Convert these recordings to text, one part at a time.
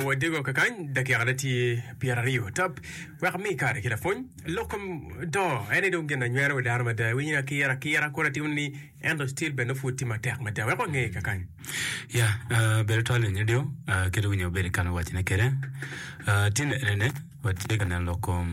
Wadego kakany dakikane tye pyeraryo tap wek ami kare ki lapwony. Lok kom do ene dong gin na nywero wi dano mada. Iwinyo ni akira akira kore timo ni ento still bene nongo pud tye matek mada. Wek wange kakany. Ya, ah, bedo twal ni nyo dong, ah, kit winyo ma Billy Kane owacone kwede, ah, tye ne- nene, watye ka neno lok kom.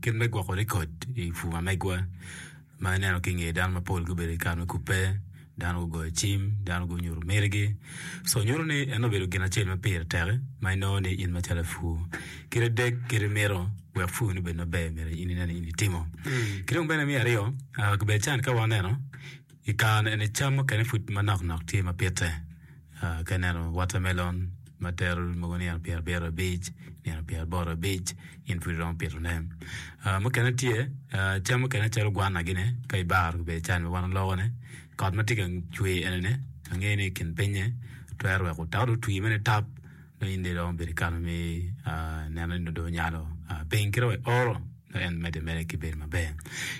Kit me gwoko rekod i pur pa megwa ma aneno ki i nge dano mapol gubedo ki kare me kubbe dano gugoyo cim dano gunyuto mitigi so nyuto ni eno obedo gin acel ma pire tek ma inongo ni in macalo lapur kadi dek kadi mito wek purni obed maber myero in inen ni in itimo ki dong bene me aryo kibedo can ka waneno i kare ni eni cam mukene pud manok nok tye ma pite. Ka ineno watermelon ma tero mogo nino pyera pyera abic nino pyera aboro abic in pud iromo pito ne mukene tye cam mukene calo gwana gine ka ibaro ribbe can ma wan waloko ne kot matye ka cwer eni ange ni kin pinye twero weko otal otwi mere nitap. Nongo in dong iromo bedo ki kare me neno ni dong onyalo piny kit ma ioro nongo en medde ameda ki bedo maber.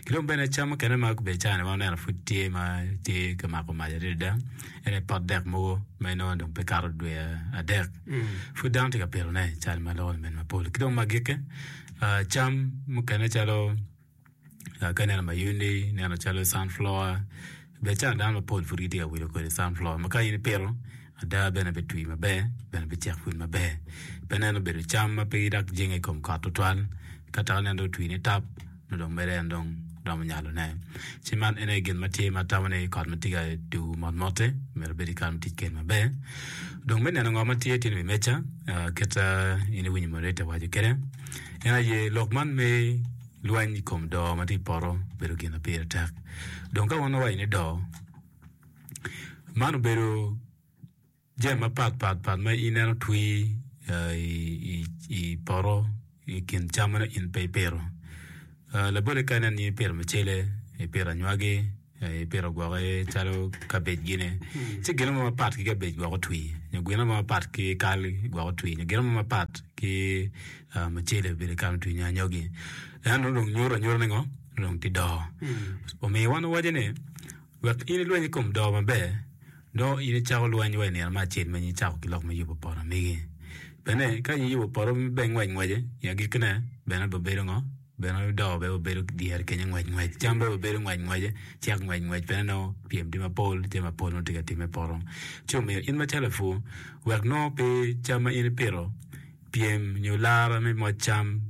Ki dong bene cam mukene ma gubedo cani ma waneno pud tye ma tye ka mako mac adada ene pot dek mogo ma inongo dong pe kato dwe adek pud dano tye ka pitone cal ma loko lamin mapol. Ki dong magikke cam mukene calo ka ineno mayundi ineno calo sunflower bene cawa dano mapol pud gitye ka wilo kodi sunflower ma ka in ipito ada bene bitwi maber bene bicek pud maber pe neno obedo cam ma pe dok jenge i kom kot tutwal ka dok ineno dong otwi nitap nongo dong mere en dong romo nyalone ci man en aye gin ma tye ma atamo ni kot ma tye ka tum mot motte myero obed kare mutic kwede maber dong me neno ngo ma tye tye ni wi meja kit ma in iwinyo moderator owaco kwede. En aye lok man me lweny i kom doo ma tye i poto obedo gin ma pire tek. Dong ka wan wawaco ni doo, man obedo jami mapat pat pat ma in en otwi i poto i kin cam ma nongo in pe ipito. Labole kadi ni en aye ipito mucele, ipito anywagi. Ipito gwoki calo kabej gine ci gine mo mapat ki kabej gwok otwi nyo gine mo mapat ki kal gwok otwi nyo gine mo mapat ki mucele obedo kany otwi nyo anyogi en nongo dong nyuto anyuta ni ngo nongo dong tye doo omiyo wan wawaco ni wek in ilweny i kom doo maber nongo in icako lweny wa i nino me acel ma in icako ki lok me yubo poto magi bene ka in iyubo poto ma bene ngwec ngwece i agikki ne bene bibedo ngo bene odoko bene wabedo dyere kenyo ngwec ngwec cam bene wabedo ngwec ngwece cek ngwec ngwec bene nongo pyem tye mapol jami mapol nongo tye ka timme i poto ci omiyo in macalo lapur wek nongo pe cam ma in ipito pyem nyo lara me moc cam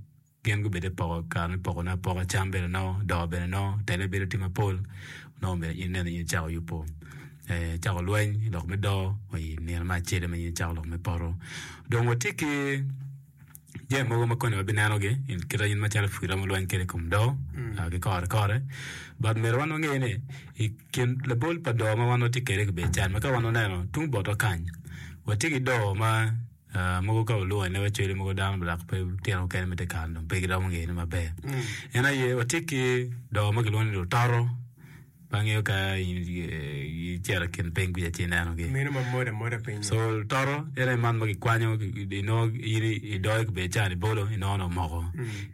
gin gubed i poko kare me pokone apoka cam bene nongo doo bene nongo tele bedo tye mapol nongo myero in ineno ni in icako yubu icako lweny i lok me doo i nino me acel ma in icako lok me poto dong watye ki jami mogo ma koni wabinenogi kit ma calo pur ma wulweny kwede i kom doo ki kore kore but myero wan wange ni i kin labol pa doo ma wan watye kwede i kabedo man ka wan waneno tung botwa kany watye ki doo ma mogo ka walwongo i lacwale mogo dano dok tyen mukene ma tye ka kare-ni pe giromo ngeyone maber en aye watye ki doo ma kilwongo ni lutoto. Pe angeyo ka gicito i kin piny kuca ci inenogi. So toto ene man ma kikwanyo inongo in idoyo ki becan ibolo inongo ni omoko.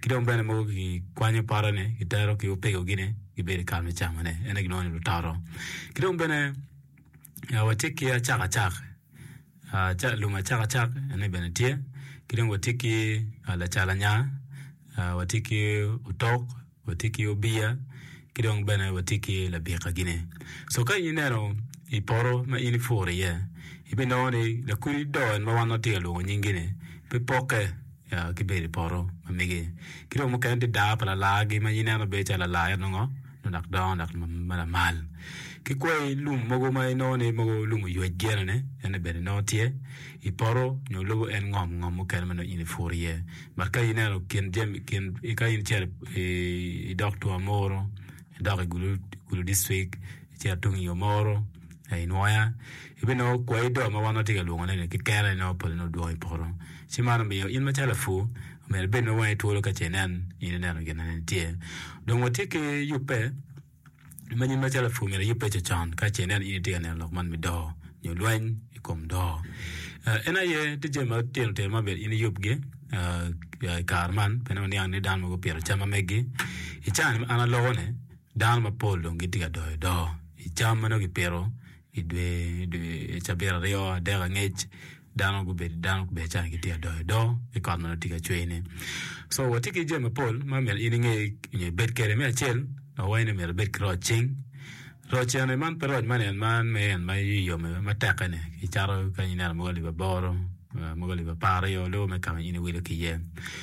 Ki dong bene mogo kikwanyo potone kitero ki opegogine gibedo i kare me camone ene gilwongo ni lutoto. Ki dong bene watye ki acakacak lum acakacak ene bene tye ki dong watye ki lacalanya watye ki otok. watye ki obiya ki dong bene watye ki labikagine. So ka in ineno i poto ma in ipuro iye, ibinongo ni lakodi do en ma wan watye ka lwongo nyingi-ni pe pokke ya ki bedo i poto ma mege. Ki dong mukene tye daa pa lalagi ma in ineno bedo calo lala ento nongo nongo dok dongo dok ma lamal. Ki kwai lum mogo ma inongo ni mogo lum oywec gene-ni, en-ni bene nongo tye i poto nyo lubo en ngom ngom mukene ma nongo in ipuro iye. Ma ka ineno kin jami kin ka in icito idok twon muru idok i gulu dictrik icito tung i yo muru ka inwoya ibinongo kwai do ma wan watye ka lwongone-ni keken-ni nongo pole nongo dwong i poto ci man omiyo in macalo lapur myero ibed ma wangi twolo ka ce inen in ineno gin ma nen tye dong watye ki yubbe Many ma calo lapur myero eyub pecce con ka ce inen ni in itye ka neno lok man me doo nyo lweny i kom doo. En aye tye jami ma tino tino ma myero in iyubgi i kare man pien waniang ni dano mogo gupito cam ma megi. I caa-ni ma an aloko-ni, dano mapol dong gitye ka doyo doo i cam ma nongo kipito I dwe cabit aryo adek angec dano gubedo dano gubedo calo gitye ka doyo do ci kot mere tye ka cwer ne so watye ki jami mapol ma myero in inge nyo ibed kwede me acel awaci ni myero ibed ki roc cing roc eni man pe roc man en man ma en yom aye ma teke ni icato kanya ineno mogo alip aboro mogo alip apar aryo lubbe me kama in iwilo ki iye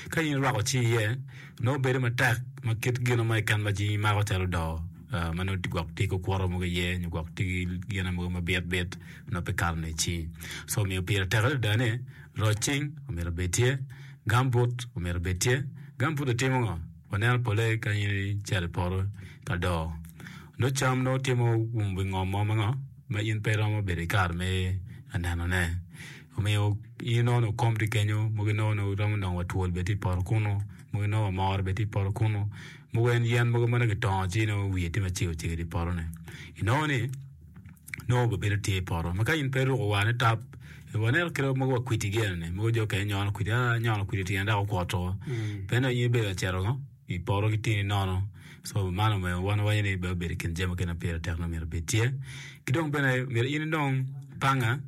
ka in irwako cing iye nongo bedo matek ma kit gino ma keken ma cing imako calo do. ma nongo gwok tye ki okuto mogo iye nyo gwok tye ki gine mogo ma bit bit ma nongo pe kato ne ci so omiyo pire tek adada ni roc cing omyero obed tye gambut omyero obed tye, gambut otimo ngo waneno pole kany cito i poto ka doo nongo cam nongo tye ma oumo wi ngom mo ma ngo ma in pe iromo bedo ki kare me aneno ne omiyo in nongo ni okom tye kenyo mogo nongo ni iromo nongo wa twol bene tye i poto kunu mogo nongo wa moro bene tye i poto kunu. mogo en yen mogo ma nongo kitongo ci nongo wiye tye macego cego idi potone inongo ni nongo bene bedo tye i poto ma ka in pe iruko war nitap waneno kit mogo wa kwidi gi eni mogo jo okene nyono kwidi aa nyono kwidi tyen dok okwot woko pe nongo in ibedo ka cito ngo i poto ki tini nono co man omyero wan wawaco ni bene obedo i kin jami mukene ma pire tek nongo myero obed tye ki dong bene myero in inong panga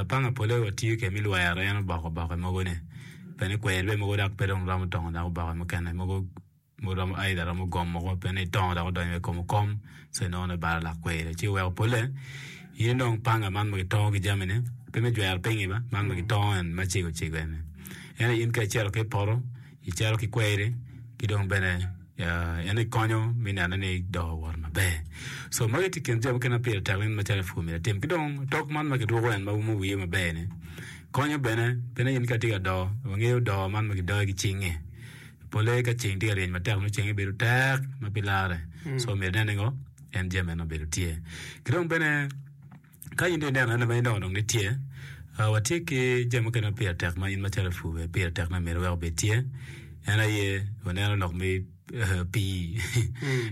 Panga pole wa tiyo kede me lwero en oboko oboke mogo ne pene kwer be mogo dok pe dong romo tongo dok oboke mukene mogo mogo romo aidha romo gom mogo pene i tongo dok odonyo wa i kom okom so inongo ni balo lak kweri ci oweko pole in dong panga man ma kitongo ki jami ne pe me jwero pingi ba man ma kitongo en macego cego eni ento in kacito ki ipoto icalo ki kweri ki dong bene en aye konyo me neno ni dong owoto maber so magi tye i kin jami mukene ma pire tek macalo pur myero itim ki dong otok man ma kiruko en ma umo wiye maber-ni konyo bene pi ni in ka itye ka do wangeyo do man ma kidoyo ki cingnge polle ka ceng tye ka ryeny matek nongo cenge bedo tek ma pe larre so myero inene ni ngo en jami meno obedo tye ki dong bene Ka in dong ineno anena ma in dong onongo itye, ah, watye ki jami mukene ma pire tek ma in macalo lapur bene pire tek ma myero iwek obed tye. En aye, waneno lok me eh, pii.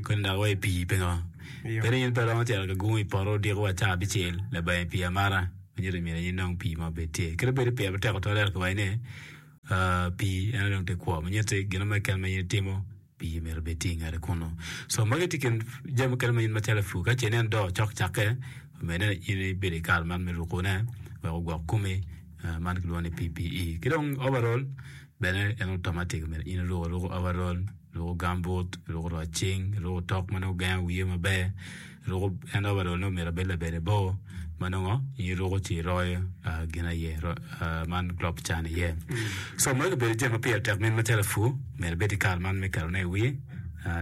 Koni dok wa i pii pingo? Iyo. Kadi in pe romo cito ka gungo i poto odiko wa caa abicel labayi pii amata, manyuto ni myero in dong pii mo obed tye. Kadi bed ni pire pe tek tutwal ento kiwaci ni ah, pii en aye dong te kwo. Manyuto ni gin mo keken ma in itimo, Pii myero obed tye i ngete kunnu. So magi tye kin jami mukene ma in macalo ipur ka ce inen doo cok cakke omedde ni in ibedo i kare man me rukone wek ogwok komi man kilwongo ni PPE. Ki dong overall bene en automatic omyero in iruku aruku overall, iruku gambut, iruku roc cing, iruku tok ma nongo gengo wiye maber. Ruko, En overall-le omyero obed labade bor ma nongo in iruko ci iroyo gin aye, man crop ca ni iye. So magi obedo jami ma pire tek min macalo apur myero ebed ki kar man me ketone i wiye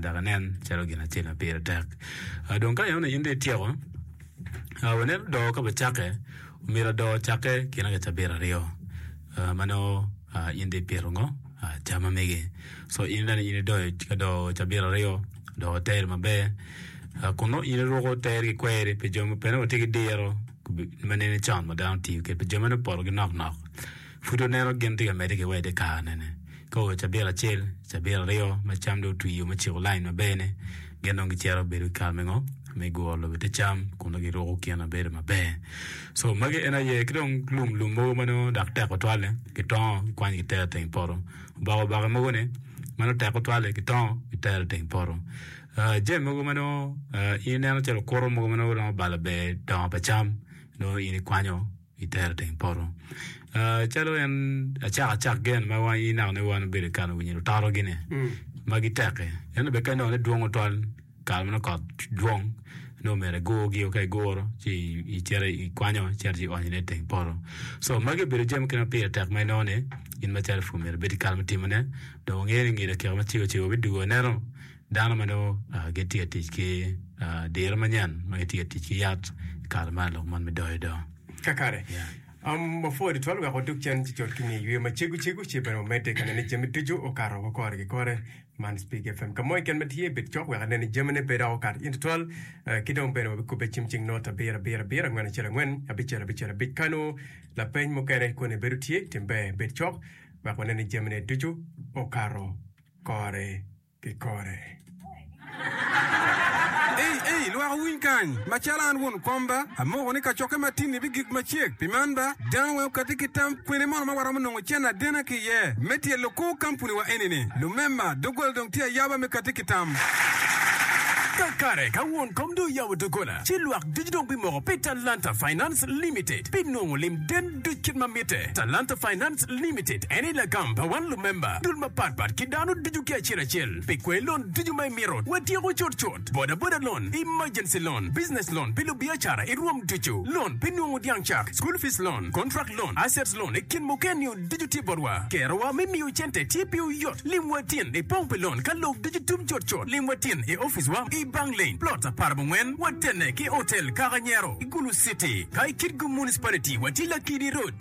dok enen calo gin acel ma pire tek. Dong ka ineno ni in dong ityeko, wanen odoo ka bene cakke, omyero odoo ocakke kinaka cabit aryo ma nongo in dong ipito ngo. Aca mamege so in bene in idoyo ka do cabit aryo dok iteri maber kun nongo in iruko teri ki kweri pi jo mukene wa tye ki diro ma nene con ma dano tiyo kwede pi jo ma nongo opoto ki nok nok pud waneno gin tye ka medde ki wa ite kare-ni ka oa cabit acel cabit aryo ma cam dong otwio me ciko lain maber-ni gin dong gicito bedo ki kare me ngo me guro lobo te cam kun nongo giruko kin mabedo maber so magi en aye ki dong lum lum mogo ma nongo dok tek tutwalle gitongo gikwanyo gitero iteng poto oboke oboke mogo ni ma nongo tek tutwalle gitongo gitero iteng poto jami mogo ma nongo in ineno calo okuto mogo ma nongo romo balo ber dongo pa cam nongo in ikwanyo itere teng poto calo en acak acak gen ma wan inako ni wan obedo kare winyo lutoro gine ma giteki ento bene ka inongo ni dwongo twal kare manongo kot dwong nongo omyero igurgi o ka iguro ci icito ikwanyo icito ci ionyo ne iteng poto so magi obedo jami mukene ma pire tek ma inongo ni in macalo pur myero ibed ki kare me timone dong wangeyo ni nge lacek ma cego cego bidwogo aneno Dano ma nongo gitye ka tic ki diro manyen ma gitye ka tic ki yat i kare man lok man bidoyo do. Kakare. Wapwod itwal wek wadog cen ci cot ki nge yweyo ma cego cego ci bene wamedde ka nene jami ducu okato woko kore ki kore. Man Speak FM ka mo keken ma tye bed cok wek aneni jamine pe dok okato in tutwal eh, ki dong bene wabikubbe cim cing not abiro abiro abiro angwen acel angwen abicel abicel abic ka nongo lapeny mukene koni bedo tye tim ber bed cok wek waneni jamine ducu okato kore. ki kore. Ei, ei, lwak wuwiny kany! Macalo an won komba, amoko ni kacokke matinni bigik macek. Pi man ba, dano weng okatti ki tam, kwene mono ma waromo nongo cen adena ki iye me tyelo kor kampuniwa eni-ni? Lumema, doggola dong tye ayaba me katti ki tam. Kakare, ka won kom dong oyabo doggola, ci lwak ducu dong bimoko pi Talanta Finance Limited, pi nongo lim den duc kit ma mitte. Talanta Finance. Trust Limited en aye lagam pa wan lumemba dul mapat pat ki dano ducu ki acel acel pi kwee lon ducu ma imito. Watyeko cut cut, boda boda loan, emergency loan, business loan pi lubiacara i rwom ducu, loan pi nungu dyang cak, school fees loan, contract loan, assets loan i kin mukene-niu ducu tye botwa. Kerowa me miyo cente tye piwu yot. Lim watin i pong pi lon ka lok ducu tum cut cut. Lim watin i opic wa i Bang Lane, plot apar mungwen, watenne ki Hotel Kaka Nyero, Gulu City. Ka i Kitgum Municipality, watye Lakidi Road.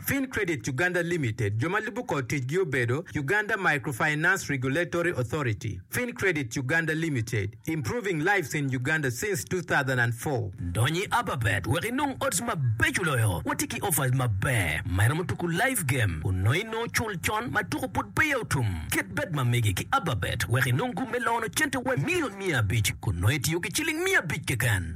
Fin Credit Uganda Limited, jo ma lubo kor ticgi obedo, Uganda Microfinance Regulatory Authority, Fin Credit Uganda Limited, Improving Lives in Uganda since 2004. Dony i Aba Bet wek inong odds mabeco loyo. Watye ki offers maber ma iromo tuku live game onongo inongo cul con ma tuku pud peya otum. Ket bet ma mege ki Aba Bet wek inong gum me lono cente wa milion miya abic kun nongo itiyo ki ciling miya abic keken.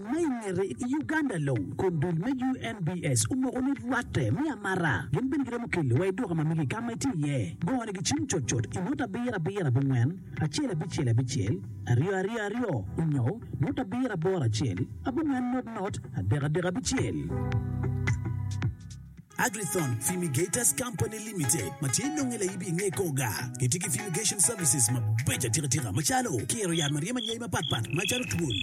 Ma i ngete i Uganda long, kun dul me UNBS omoko ni rwatte me amara gin bene giromo keli wa i duka ma mege ka ma itye iye. Gone gicim cut cut i nota abiro abiro abongwen acel abicel abicel aryo aryo aryo onyo nota abiro aboro acel abongwen not not adek adek abicel. Agrithon Fumigators Company Limited ma tye nonge laibi i nge Koga gitye ki fumigation services mabeco atika tika macalo kiro yat ma ryemo anyayi mapat pat macalo twol,